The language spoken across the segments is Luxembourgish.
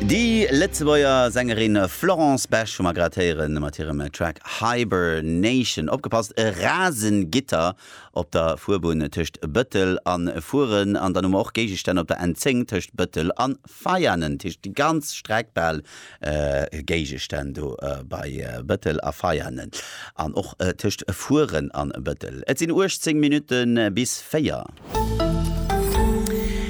Déi Lëtzebuerger Sängerin Florence Besch hu mer grad héieren mat hirem Track Hibernation. Opgepasst, e rasen Gitter op der Fuerbunn tëscht Bëttel a Furen an dann hu mer och Géigestänn op der N10 tëscht Bëttel a Veianen, tëscht déi ganz Streck bal Géigestänn do bei Bëttel a Veianen an och tëscht Furen an Bëttel. Et sinn 18 Minutte bis 4.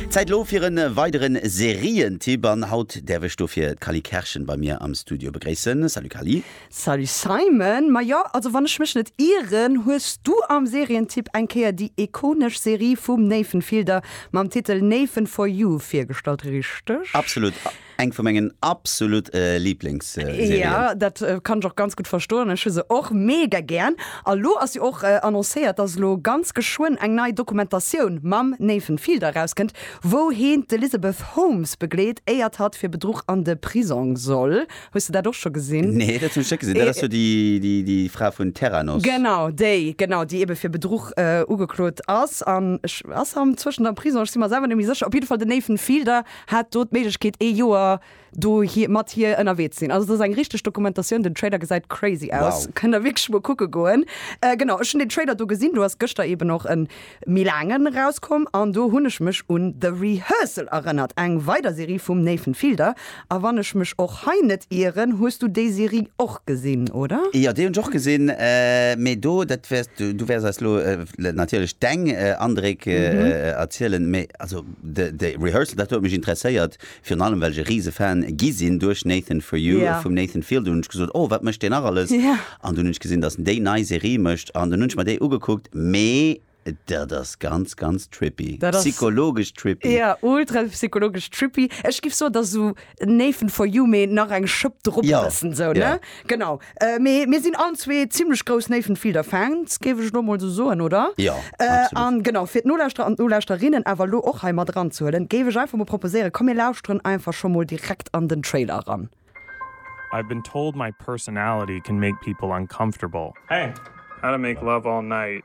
Zäit elo fir e weidere Serientipp an haut däerf ech dofir d'Cally Kerschen bei mir am Studio begréissen. Salut Cally. Salut Simon. Ma jo, also wann ech mech net ieren, hues du am Serientipp eng Kéier déi ikonesch Serie vum Nathan Fielder mam Titel Nathan for You virgestallt, richteg? Absolut. Eng vu mengen absolut Lieblingsserien. Jo, dat kann ech och ganz gutt verstoen. Ech hu se och mega gären. A lo ass jo och annoncéiert, dass elo ganz geschwënn eng nei Dokumentatioun mam Nathan Fielder erauskënnt, wou heen d'Elizabeth Holmes begleet, éiert hatt fir Bedruch an de Prisong soll. Hues de dat och scho gesinn? Nee, dat hunn ech net gesinn. Dat ass jo déi, déi Fra vun Theranos. Genau déi, genau, déi ebe fir Bedruch ugeklot ass. An ech, ass se am zwëschent am Prisong? Ech si mer selwer net méi sécher. Op jidde Fall den Nathan Fielder hat do d'Méiglechkeet ee Joer do hir mat hir ënnerwee ze sinn. Also dat ass eng richteg Dokumentatioun, den Trailer gesäit crazy aus, Wow. kënnt der wierklech emol kucke goen. Äh genau, ech hunn den Trailer do gesinn, do ass gëschter eeben och en méi laangen erauskomm an do hunn ech mech un The Rehearsal erënnert, eng weider Serie vum Nathan Fielder. A wann ech mech och hei net ieren, hues du déi Serie och gesinn, oder? Jo, déi hunn ech och gesinn, mee do, dat wäers, du wäers eis elo natierlech deng Andréck erzielen, mee also. De Rehearsal, dat huet mech interesséiert, virun allem well ech e rise Fan gi sinn duerch Nathan For You vum Nathan Fielder. Hunn ech gesot, oh wat mécht deen nach alles? An dunn hunn ech gesinn, datt en déi nei Serie mécht an dunn hunn ech mer déi ugekuckt. Mee dat ass ganz, ganz trippy, psychologesch trippy. Jo, ultra psychologesch trippy. Ech géif soen, et ass esou Nathan For You, mee nach eng Schëpp drop, e bëssen esou, ne? Genau. Mee mir sinn allen zwee zimmlech grouss Nathan Fielder Fans, géif ech elo mol esou soen, oder? Jo, absolut. An genau, fir d'Nolauschterer an d'Nolauschterinnen awer elo och hei mat eranzehuelen, géif ech einfach mol proposéieren, komm mir lauschteren einfach scho mol direkt an den Trailer eran. I've been told my personality can make people uncomfortable. Hey, how to make love all night.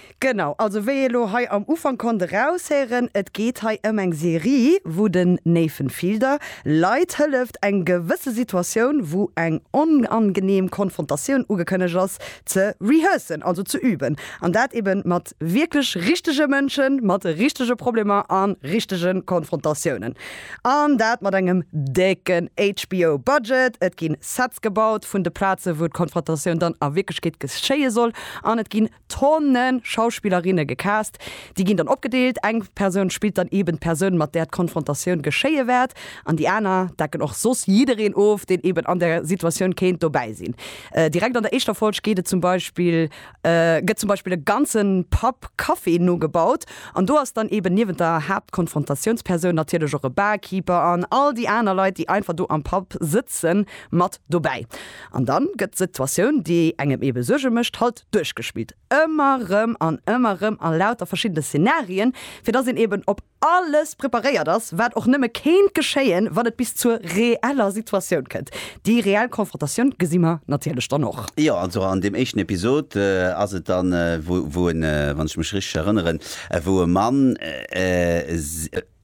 Genau, also wéi ee lo hei am Ufank konnt eraushéieren, et geet hei ëm eng Serie, wou den Nathan Fielder Leit hëlleft, eng gewësse Situatioun, wou eng onangenehm Konfrontatioun ugekënnegt ass, ze rehearsen, also ze üben. An dat ebe mat wierklech richtege Mënschen, mat richtege Problemer a richtege Konfrontatiounen. An dat mat engem décken HBO-Budget. Et gi Sets gebaut vun de Plazen, wou d'Konfrontatioun dann a Wierklechkeet geschéie soll, an et gi Tonne Schauspillerinne gecast. Déi ginn dann opgedeelt, eng Persoun spillt dann eeben d'Persoun, mat där d'Konfrontatioun geschéie wäert, an déi aner decken och soss jiddereen of, deen eeben an der Situatioun kéint dobäi sinn. Direkt an der éischter Folg geet et zum Beispill, gëtt zum Beispill e ganze Pub Café nogebaut, an do ass dann eeben niewent der Haaptkonfrontatiounspersoun natierlech och e Barkeeper an all déi aner Leit, déi einfach do am Pub sëtzen, mat dobäi. An dann gëtt d'Situatioun, déi engem eebe Suerge mécht, halt duerchgespillt, ëmmer rëm an ëmmer rëm a lauter verschiddene Szenarien, fir dass een eben op alles preparéiert ass, wat och nëmme kéint geschéien, wann et bis zur reeller Situatioun kënnt. Déi reell Konfrontatioun gesi mer natierlech dann och. Jo, also an deem éischten Episod ass et dann, wou, wou e, wann ech mech richteg erënneren, wou e Mann,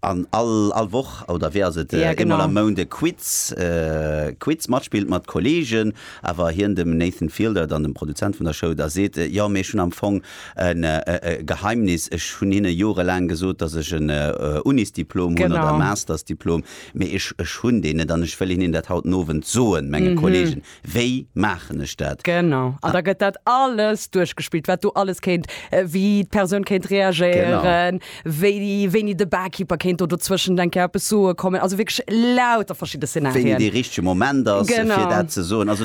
An all all Woch, oder wéi ass et, Ja, eemol am genau. Mount e Quiz, Quiz matspillt mat Kolleegen, awer hien dem Nathan Fielder, dann dem Produzent vun der Show, da seet, Jo, mee ech hunn am Fong en e Geheimnis, ech hunn hinne jorelaang gesot, datt ech en Unisdiplom hunn oder e Genau. Mastersdiplom, mee ech ech hunn deen net an ech wëll hinnen dat haut den Owend soen, menge Kolleegen. Wéi maachen ech dat? Genau, an da gëtt dat alles duerchgespillt, wat do alles kéint, wéi d'Persoun kéint reagéieren, wéini de Barkeeper kéint do dozwëschent eng Kéier eppes soe kommen, also wierklech lauter verschidde Szenarien. Wéini dee richtege Moment ass, fir dat ze soen. A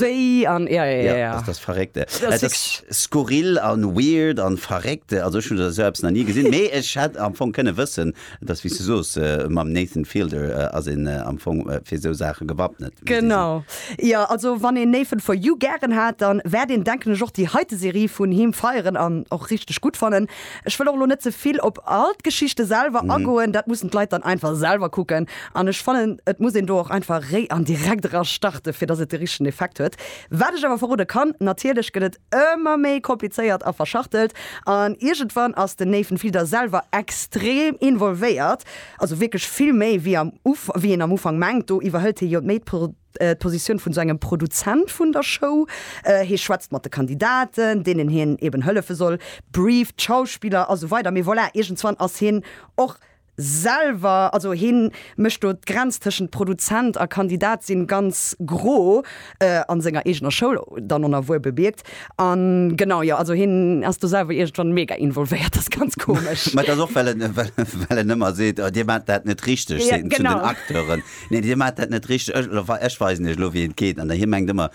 wéi an, ja, ja, ja, ja. Dat ass verréckt. Dat ass skurril a weird a verréckt. Also ech hunn esou eppes nach ni gesinn, mee ech hätt am Fong kënne wëssen, Et ass, wéi s du soos, mam Nathan Fielder ass een am Fong fir esou Saache gewappnet. Genau, jo. Also wann een Nathan For You gären hat, da wäert een, denken ech, och déi heite Serie vun him feieren an och richteg gutt fannen. Ech wëll och elo net ze vill op all d'Geschichte selwer agoen, dat mussen d'Leit dann einfach selwer kucken. An ech fannen, et muss een do och einfach réi an direkt era starten, fir dass et de richtegen Effekt huet. Wat ech awer verrode kann, natierlech gëtt et Ëmmer méi komplizéiert a verschachtelt. An iergendwann ass den Nathan Fielder selwer extrem involvéiert, also wierklech vill méi wéi am Ufank, wéi een am Ufank mengt. Do iwwerhëlt hie jo méi d'Positioun vun esou engem Produzent vun der Show. Hie schwätzt mat de Kandidaten, deenen hien eben hëllefe soll, brieft d'Schauspiller a sou weider. Mee voilà, iergendzwann ass hien och selwer, also hien mécht do d'Grenz tëschent Produzent a Kandidat sinn ganz gro, an senger eegener Schoul dann onerwuer bemierkt, an genau, jo, also hien ass do selwer iergendwann mega involvéiert, ass ganz komesch. Mä et ass och well en, well en ëmmer seet, oh, dir maacht dat net richteg, seet en zu den Acteuren, nee, dir maacht dat net richteg, ech weisen iech elo wéi et geet, an hie mengt ëmmer,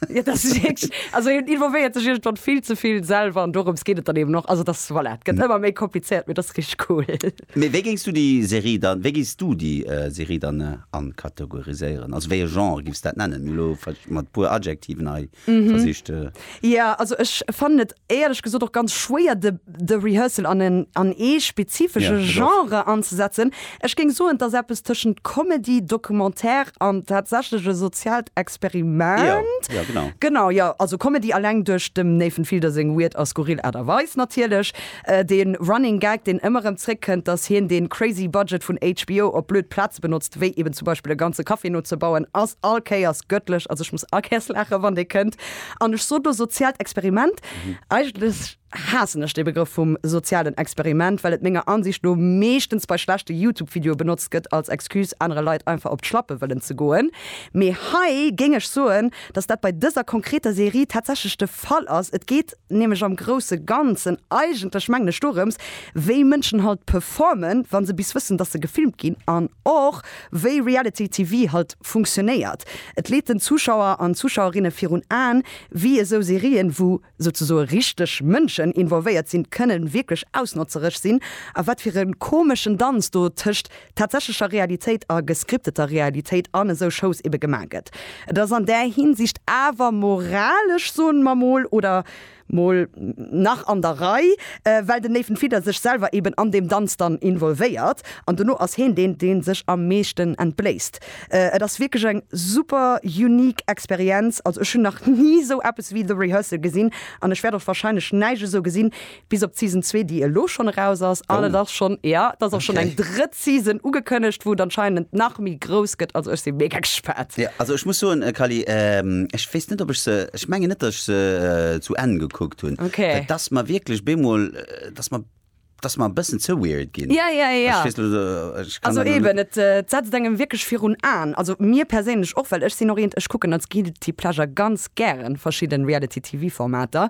Ja, das ist wirklich, also involviert sich irgendwann viel zu viel selber und darum geht es dann eben noch. Also das, voilà, es geht immer mehr kompliziert, aber das ist richtig cool. Mir, wéi géings du déi Serie dann, wéi géings du déi Serie dann ankategoriséieren? Also wéi e Genre giffs dat nennen? Mir hu lo mat e puer Adjektiven hei versicht. Ja, also ech fannen et éierlech gesot och ganz schwéier de de Rehearsal an en an ee spezifesche Ja, dat ass. Genre anzesetzen. Ech géing soen, et ass eppes tëschent Comedy, Documentaire an tatsächlech e soziaalt Ja, Experiment. ja genau. Genau, jo, also Comedy alleng duerch dem Nathan Fielder seng weird a skurril Aart a Weis natierlech. De Running Gag, deen ëmmer erëm zréckkënnt, dass hien dee crazy Budget vun HBO op blöd Plaze benotzt, wéi eben zum Beispill e ganze Café nozebauen, ass all Kéiers gëttlech. Also ech muss all Kéiers laachen, wann dee kënnt. An ech sot elo soziaalt Experiment. Eigentlech haassen ech dee Begrëff vum sozialen Experiment, well et menger Ansicht no meeschtens bei schlechte YouTube-Videoe benotzt gëtt als Excuse, anere Leit einfach op d'Schlappe wëllen ze goen. Mee hei géing ech soen, dass dat bei dëser konkreter Serie tatsächlech de Fall ass. Et geet nämlech am grousse Ganzen eigentlech, mengen ech, dorëms, wéi Mënschen halt performen, wa se bis wëssen, dass se gefilmt ginn, an och, Wéi Reality TV halt funktionéiert, et leet den Zuschauer an Zuschauerinne virun Aen, wéi esou Serien, wou souzesoe richteg Mënschen involvéiert sinn, kënnen wierklech ausnotzereg sinn a wat fir e komeschen Danz do tëscht tatsächlecher Realitéit a gescripteter Realitéit an esou Shows ebe gemaach gëtt. Et ass an där Hinsicht awer moralesch, soen mer mol, oder? Mol nach an der Rei, well den Nathan Fielder sech selwer eben an deem Danz dann involvéiert an dono ass heen deen, deen sech am meeschten entbléisst. Et ass wierklech eng super unique Experienz, also ech hunn nach ni esou eppes wéi The Rehearsal gesinn an ech wäert och wahrscheinlech näischt esou gesinn, bis op d'Season zwee, déi elo schonn eraus ass an et ass schonn, jo, et ass och schonn eng drëtt. Season ugekënnegt, wou et anscheinend nach méi grouss gëtt. Also ech si mega gespaant. Jo, also ech muss soen, Kally, ech weess net, ob ech se, ech mengen net, datt ech se zu Enn gekuckt hunn, Okay. well et ass mer wierklech bemol, et ass mer, et ass mer e bëssen ze weird ginn. Ja, ja, ja. Ech weess net, ech kann Also dat elo eben, net. et setzt engem wierklech virun Aen. Also mir perséinlech och, well ech sinn och eent, ech kucken als guilty pleasure ganz gären verschidden Reality TV Formater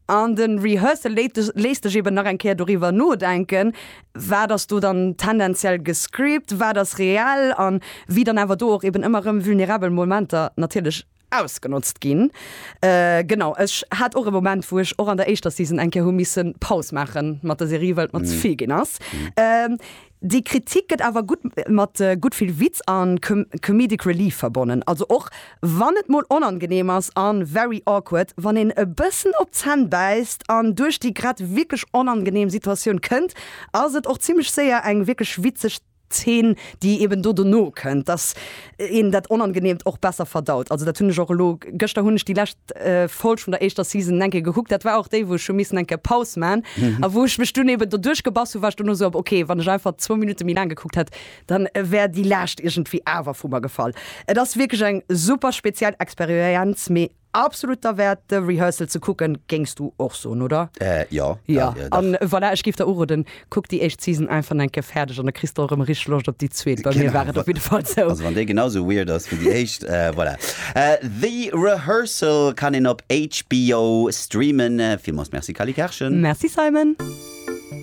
an den Rehearsal léit dech, léisst dech eben nach eng Kéier doriwwer nodenken, wat ass do dann tendenziell gescript, wat ass reell an wéi dann awer do och eben ëmmer erëm vulnerabel Momenter natierlech ausgenotzt ginn. Genau, ech hat och e Moment wou ech och an der éischter Season eng Kéier hu missen Paus maache mat der Serie well et mer ze vill ginn ass. Déi Kritik gëtt awer gutt mat gutt vill Witz an comedic relief verbonnen, also och wann et mol onangenehm ass an very awkward, wann een e bëssen op d'Zänn bäisst an duerch déi grad wierklech onangenehm Situatioun kënnt, ass et och zimmlech séier eng wierklech witzeg Zeen, déi eben do dono kënnt, dass een dat Onangenehmt och besser verdaut. Also dat hunn ech och elo, gëschter hunn ech déi lescht Folg vun der éischter Season eng Kéier gekuckt, dat war och déi, wou ech hu missen eng Kéier Paus maachen a wou ech mech dunn eben doduerch gebass hunn, war ech dono esou, ok, wann ech einfach zwou Minutte méi laang gekuckt hätt, Dann wär déi Laascht iergendwéi awer vu mer gefall. Et ass wierklech eng super speziell Experienz, mee absolut derwäert de Rehearsal ze kucken, géings du och soen, oder? Jo, jo, jo, dach. An voilà, ech géif der uroden, kuck déi éischt Season einfach nach eng Kéier fäerdeg an da kriss de och erëm richteg Loscht op déi zweet. Bei mir war et op jidde Fall esou. Also wann déi genau esou weird ass wéi déi éischt, voilà. The Rehearsal kann een op HBO streamen. Villmools Merci Cally Kerschen. Merci Simon.